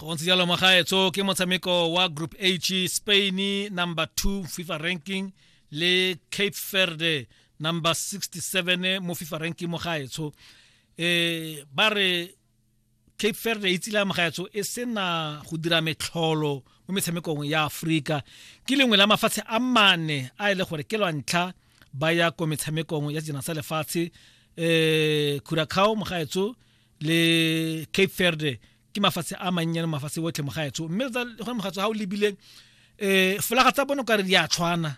go ntse jalo magaetso ke motshameko wa group h spain number 2 fifa ranking le cape verde number 67 mo fifa ranking mo gaetsho eh ba re cape verde e tsile amagaetso e sena go dira metlholo mo metshamekong ya aforika ke lengwe la mafatshe a mane a e le gore ke lwa ntlha ba ya ko metshamekong ya sejana sa lefatshe um curacao mogaetso le cape verde ke mafatshe a mannyane mafatshe otlhe mogaetso mme gone mogaetso ga o lebile um folaga tsa bone o kare di a tshwana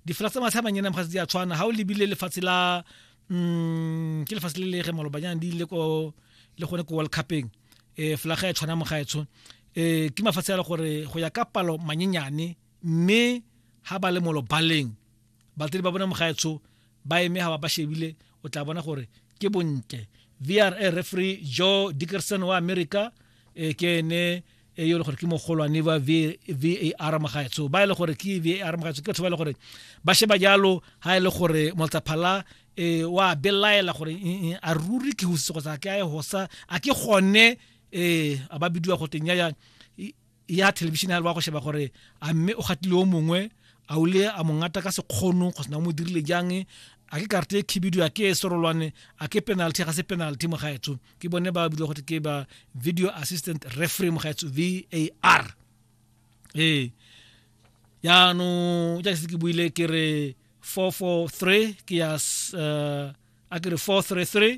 difolaga tsa mafatshe a mannyane mogaetso di a tshwana ga o lebile lefatshe la um ke lefatshe le le ge malobanyana di ile ko le gone ko world cupeng um folaga e tshwana mogaetsho um ke mafatshe a le gore go ya ka palo manyenyane mme ha ba le mo lobaleng batledi ba bona mogaetsho ba eme ha ba ba shebile o tla bona gore ke bontle vra referee joe dickerson wa america e ke ene e yo le gore ke mogolwane ba var mogaetsho ba e le gore ke var mogaetsho ke batho ba e le gore ba sheba jalo ha e le gore moltaphala e wa belaela gore a ruri ke hositse kgotsa ke a e hosa a ke gone e a ba bidiwa go teng ya ya thelebišene ya le ba go sheba gore a mme o gatile o mongwe a o le a mongata ka sekgono go sena o mo dirile jang a ke karte e khibidu a ke e sorolwane a ke penalty ga se penalty mo gaetso ke bone ba bile gote ke ba video assistant referee mo gaetso var ee yaanong jaaka se ke buile ke re 443 ke ya uh, a ke re 433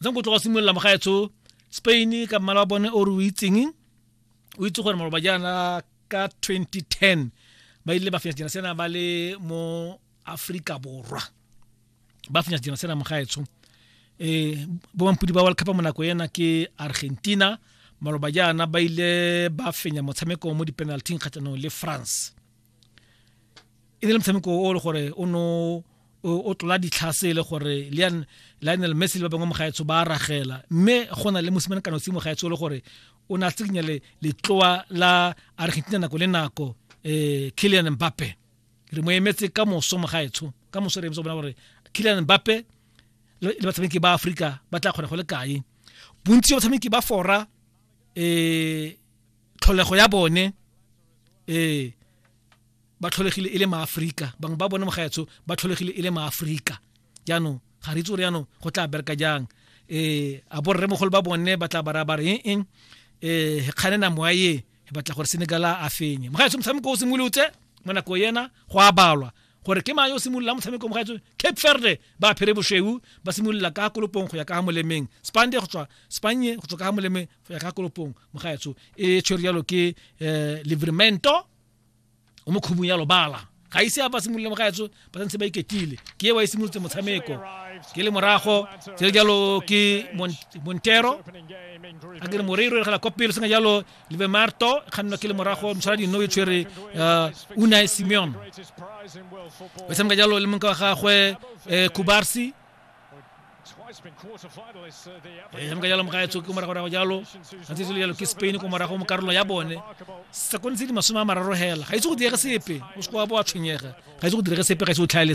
ntse go tloga simolola mogaetsho spain ka mmala wa bone o re o itseng o itse gore maloba jaana ka 2010 ba ile ba fenya sejana sena ba le mo aforika borwa ba fenya sejana sena mogaetsho um eh, bomampudi ba world cup mo nako ena ke argentina maloba jaana ba ile ba fenya motshameko mo di-penalting kgatlhanong le france e ne le motshameko o le gore o no o tlola ditlhase e le gore lean lionel messi le ba bangwe mogaetsho ba ragela mme go na le mosimane kana simo gaetsho e le gore o ne a tsikinya le letloa la argentina nako le nako um eh, killian mbappe re mo emetse ka moso mogaetsho ka moso re emetse bona gore killian mbappe le batshameki ba aforika ba tla kgona go le kae bontsi ba batshameki ba fora um tlholego ya bone eh ba tlholegile e le maaforika bangwe ba bone mogaetsho ba tlholegile e le maaforika jaanong ga re itse gore jaanong go tla bereka jang eh a borre mogolo ba bone ba tla bara bare eng eng eh kgane na moya ye e batla gore senegala a fenye mogaetsho motshameko o simolotse mo nako yena go a balwa gore ke mang yo simolola motshameko mogaetso cape verde ba phere boshweu ba simolola ka kolopong go ya ka ga molemeng spande go tswa spanye go tswa ka ga molemeng gakolopong mogaetsho e tshwere jalo ke um livremento o mo khubung ya lobala ga ise a ba simolole mogaetsho ba santse ba iketile ke e wa e simolotse motshameko ke le morago tse jalo ke montero a kere moreiro e gela kwa pele sena jalo leve marto e kgannwa ke le morago motshwara dino e tshwere uh, unai simeon o tshameka jalo le monka wa gagwe um kubarsi e tshameka jalo moga etsho ke morago rago jalo a ntse jalo ke spain ko morago mo karolo ya bone sa kontshe di masome a mararo hela ga itse go direge sepe o se kwa bo a tshwenyega ga itse go direge sepe ga itse o tlhaele